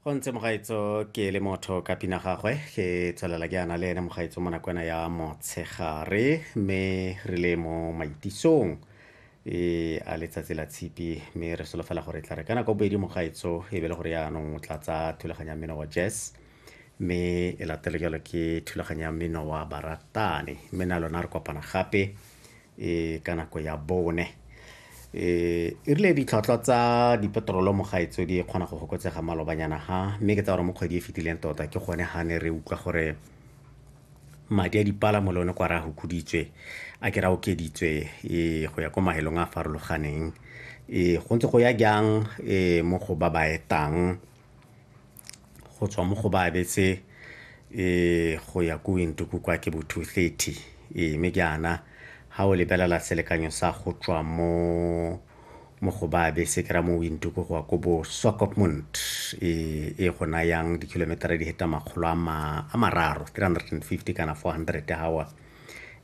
go ntse mogaetso ke le motho ka pina gagwe ke tswelela ke ana le ene mogaetso mo nakwana ya motshegare mme re le mo maitisong e a letsatsi la tshipi mme re solofela gore tla re ka nako bobedi mogaetso e be le gore yaanong o tla tsa thulaganyo ya mmino wa jazz mme e latelo jalo ke thulaganyo ya mmino wa baratane mme na lona re kopana gape e ka nako ya bone e rile ditlhwatlhwa tsa dipetrolo mo gaetso di kgona go fokotsega malobanyana ha mme ke tsa gore mo kgwedi e fetileng tota ke gone ga ne re utlwa gore madi a dipalamo le one kwa re a hukuditswe a ke ra okeditswe e go ya ko mahelong a a farologaneng e go ntse go ya jang e mo go ba ba etang go tswa mo go ba abetse um go ya ko wintuku kwa ke bo two thirty ee mme jaana ga o lebelela selekanyo sa go tswa mo mo go ba abetse kry-a mo wintuku go ya ko bo swakopmund ee e go nayang di-kilometer-a di heta makgolo a mararo three hundred and fifty kana four hundred hour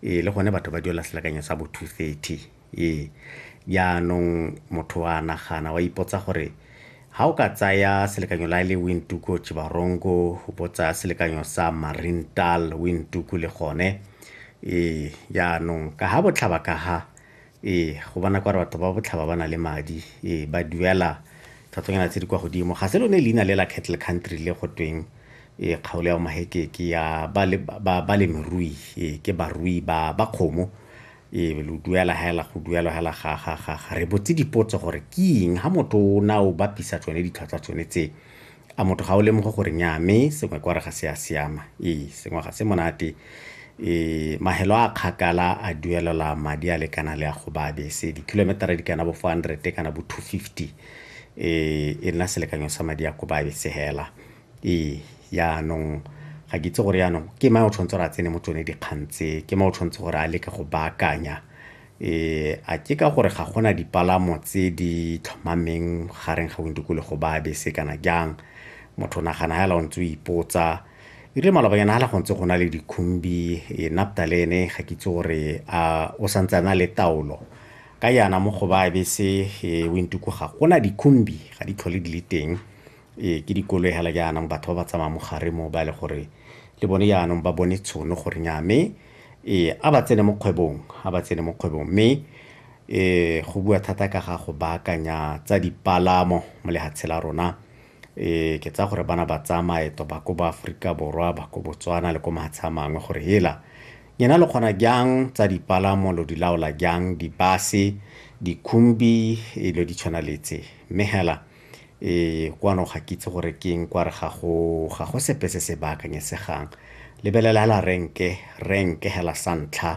ee le gone batho ba duela selekanyo sa bo two thirty Ee, jaanong motho wa nagana wa ipotsa gore ga o ka tsaya selekanyo la le Wintuku Chibarongo o bo tsaya selekanyo sa Marintal Wintuku le gone ee jaanong ka ga botlhaba ka ga ee go bona kwa re batho ba botlhaba ba na le madi ee ba duela tlhatlhonyana tse di kwa godimo ga se lone leina le la cattle country le go tweng ee kgaolo ya mahekeke ya balemirui ee ke barui ba ba kgomo e be lo duela hela go duelo hela ga ga ga ga re botse dipotso gore ke eng ha motho o na o bapisa tsone ditlhwatlhwa tsone tse a motho ga o lemoge gore nya mme sengwe kwa re ga se a siama ee sengwe ga se monate um mahelo a kgakala a duelela madi a lekana le a go ba bese di-kilometera di kana bo four hundred kana bo two fifty um e nna selekanyo sa madi a ko ba bese hela Ee, yaanong ga ke itse gore yaanong ke mang o tshwanetse gore a tsene mo tsone dikgang tse ke mang o tshwanetse gore a leke go baakanya um a ke ka gore ga gona dipalamo tse di tlhomameng gareng ga dikologo ba bese kana jang motho nagana fela o ntse o ipotsa ebile malobanyana fela go ntse go na le dikhumbi e napta le ene ga ke itse gore a o santse a na le taolo ka yana mo go ba bese e wintuku ga gona dikhumbi ga di tlhole di le teng Ee, ke dikoloi hela jaanong batho ba ba tsamaya mo gare mo ba e le gore le bone jaanong ba bone tshono gore nya mme ee a ba tsene mo kgwebong a ba tsene mo kgwebong mme ee go bua thata ka ga go baakanya tsa dipalamo mo lehatshe la rona ee ke tsa gore bana ba tsaya maeto ba ko ba Aforika Borwa ba ko Botswana le ko mahatshe a mangwe gore hela nyena le kgona jang tsa dipalamo lo di laola jang dibase dikhumbi e lo di tshwana letse mme hela Ee, kwano ga ke itse gore ke eng kware ga go ga go sepe se se baakanyesegang lebelela hela renke renke hela sa ntlha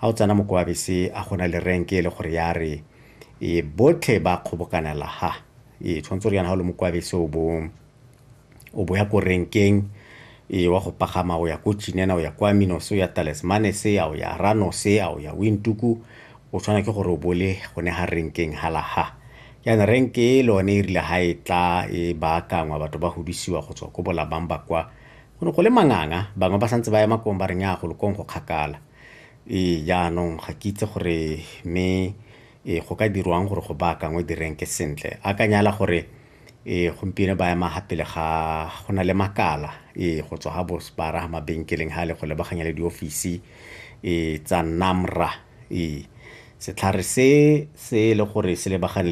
ga o tsena moko wa bese a gona le renke e le gore ya re e botlhe ba kgobokanela ha e tshwanetse gore yana ga o le moko wa bese o bong o bo ya ko renkeng e wa go pagama o ya ko chinena o ya kwa minos o ya talesmanes a o ya ranos a o ya wintuku o tshwana ke gore o bole gone ga renkeng halaha yana renke e lone e rile ga e tla e baakangwa batho ba godisiwa go tswa ko bolabang ba kwa go ne go le manganga bangwe ba santse ba ema kong ba reng ya go lokong go kgakala ee jaanong ga ke itse gore mme e go ka dirwang gore go baakangwe direnke sentle a ka nyala gore Ee, gompieno ba ema gapele ga go na le makala ee go tswa ga bosbara ga mabenkeleng ga le go lebaganya le diofisi ee tsa NAMRA ee setlhare se se e le gore se lebagane le